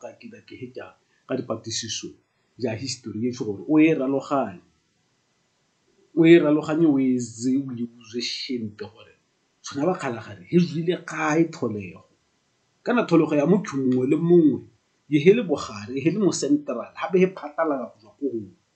Ga ke ka ke heta ka dipatisiso ja history e gore o e raloganye, o e raloganye o e etse o e buse shente gore tshwana ba kgalagadi he tswile kae tlholego. Kana tlholego ya motho mongwe le mongwe he le bogare he le mo central gape he phatalala go tswa ko gongwe.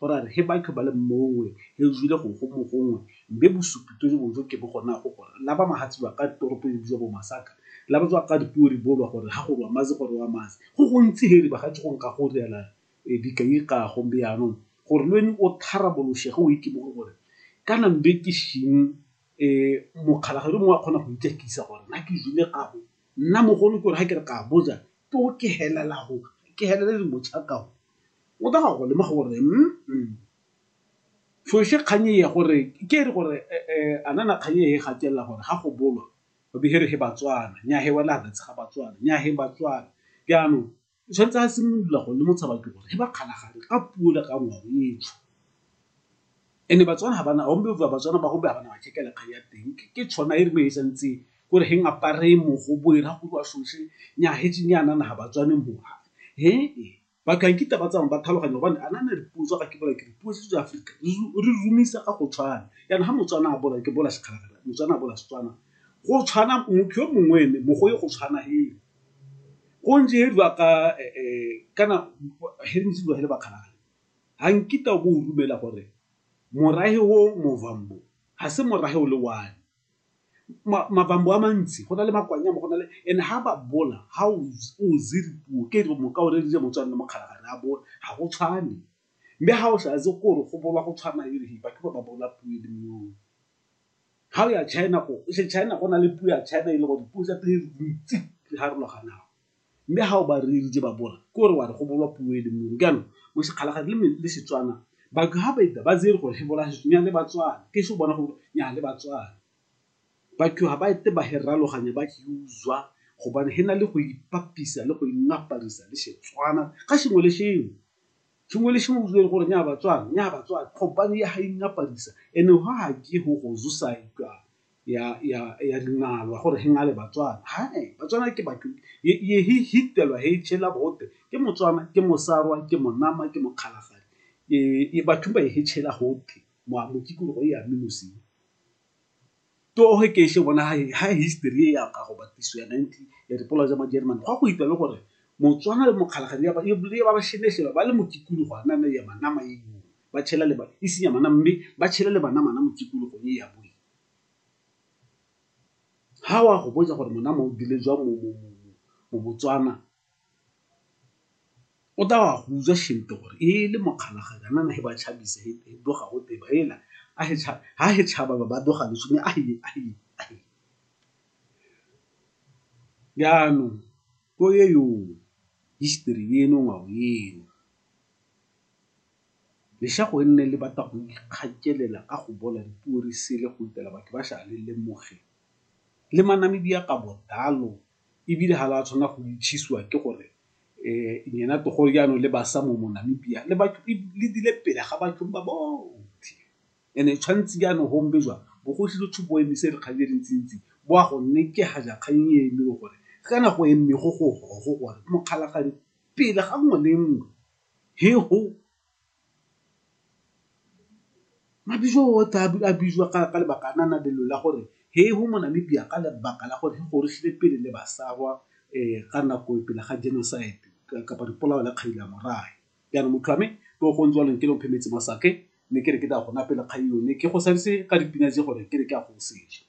Go ra re he batho ba le mmongwe, he jwile go go mogongwe, mbe bosupi to jo bojo ke bo gona go gore, la ba mahatsi wa ka toropo e bjwa bo Masaka, la ba jwa ka dipuo ri bolwa gore ha go rwa mazi go rewa mazi. Go gontsi he ri ba ga tšhogong ka go riala dikai ga go mbe yanong gore lweni o tharaboloshe ge o ikimoge gore kana mbe ke shing e mokgalagadi o mongwe a kgona go ijakisa gore na ke jwile ga go nna mogolo ke gore ha ke re ka boja to ke helela go ke helele di mocha ka go O tla go lemoga gore mm tsoše kgang eye gore ke re gore a nana kgang eye gatelela gore ga go bolwa o be here he Batswana nya he wela re tshega Batswana nya he Batswana jaanong o tshwanetse a simolola go le motshaba ke gore he ba kgalagadi ka puo le ka ngwao etsho ene Batswana ga bana gombe ba Batswana ba gombe ga bana ba tšhekela kgang ya teng ke tshwana e re mo e sa ntse gore he ngapare mogo bo e ra go ba shoshe nya he tšenya nana ga Batswane mo he e. ba ka nkita ba tsamaya ba tlhaloganya gobane a nana dipuo tsa ga ke bola ke dipuo tse tsa Afrika re rumisa ka go tshwana yana ga Motswana a bola ke bola sekgalagala Motswana a bola Setswana go tshwana motho yo mongwe ene mogo yo go tshwana hele go ntse he dwa ka kana he ntse dwa hele bakgalagala ga nkita o bo o rumela gore morahe o movambo ga se morahe o le one. mabambo a mantsi go na le makwanya mo go na le and ha ba bola ha o puo ke mo ka o re dira motswana le mokgalabje ga re a bola ga go tshwane. Mme ha o sa itse gore go bola go tshwana e re ba ke ba ba bola puo e le nngwe. Ha o ya China ko China go na le puo ya China e le gore puo tsa teng dintsi di harologana. Mme ha o ba reeditše ba bola, ke gore wa re go bolwa puo e le nngwe. Jaanong, Moshikgalagadi le, le Setswana, batho ha ba ita ba tsere gore he bola Setswana, nyaa le Batswana. Ke se o bona go bolwa, nyaa le Batswana. Batho ha ba ite ba he raloganya ba he uzwa gobane he na le go ipapisa le go ingaparisa le Setswana ka sengwe le sengwe. Sengwe le sengwe o uzwa e le gore nyaa Batswana, nyaa Batswana gobane ya ha ingaparisa. Ene ho ha ke ho go zusa jwalo. ya ya ya dinalwa gore he ngale batswana ha batswana ke batho ye he hitelwa he chela bote ke motswana ke mosarwa ke monama ke mokgalagadi e e batho ba he chela hote mo mo ke go ya minusi to he ke she bona ha ha history ya ka go batiswa ya 90 ya dipola tsa majerman go go itwa le gore motswana le mokgalagadi ya ba e ba ba shene shela ba le mo tikulu go ana ya manama e ba tšhela le ba isinya mana mme ba tšhele le bana mana mo tikologong e ya boe ha wa go botsa gore mona mo dile jwa mo mo mo mo Botswana o tla wa go utswa shente gore e le mokgalaganya nana he ba chabise he doga go teba hela a he cha ha he chaba ba ba doga le shone a he a he a he jaanong ko ye yo history eno ngwao eno Leshago e nne le batla go ikgakelela ka go bola dipuo re sele go utela batho ba sha le lemoge le ma Namibia ka bodalo e bile ha la tshwana go itshisiwa ke gore nyena to gore jaanong le basa mo mo Namibia le batho le dile pele ga batho ba botho and e tshwantse jaanong go be jwa bogosi jo tshupo emise re kgang e le ntsi ntsi bo a gonne ke ga ja kgang e eme le gore kana go eme go go go gore mokgalagadi pele ga nngwe le nngwe. He ho! Mabitso otlhe a bitswa ka lebaka la na lelo la gore he ho Monamibia ka lebaka la gore he go rutlhile pele le basarwa ka nako pele ga genocide kapa dipolao la kgadi la morahe. Jaanong motho wa me ke o go ntse jalo nkele o mphe metsi mo sake mme ke re ke tla go nwa pele kgang eo mme ke go sadise ka dipina tse gore ke re ke a go seja.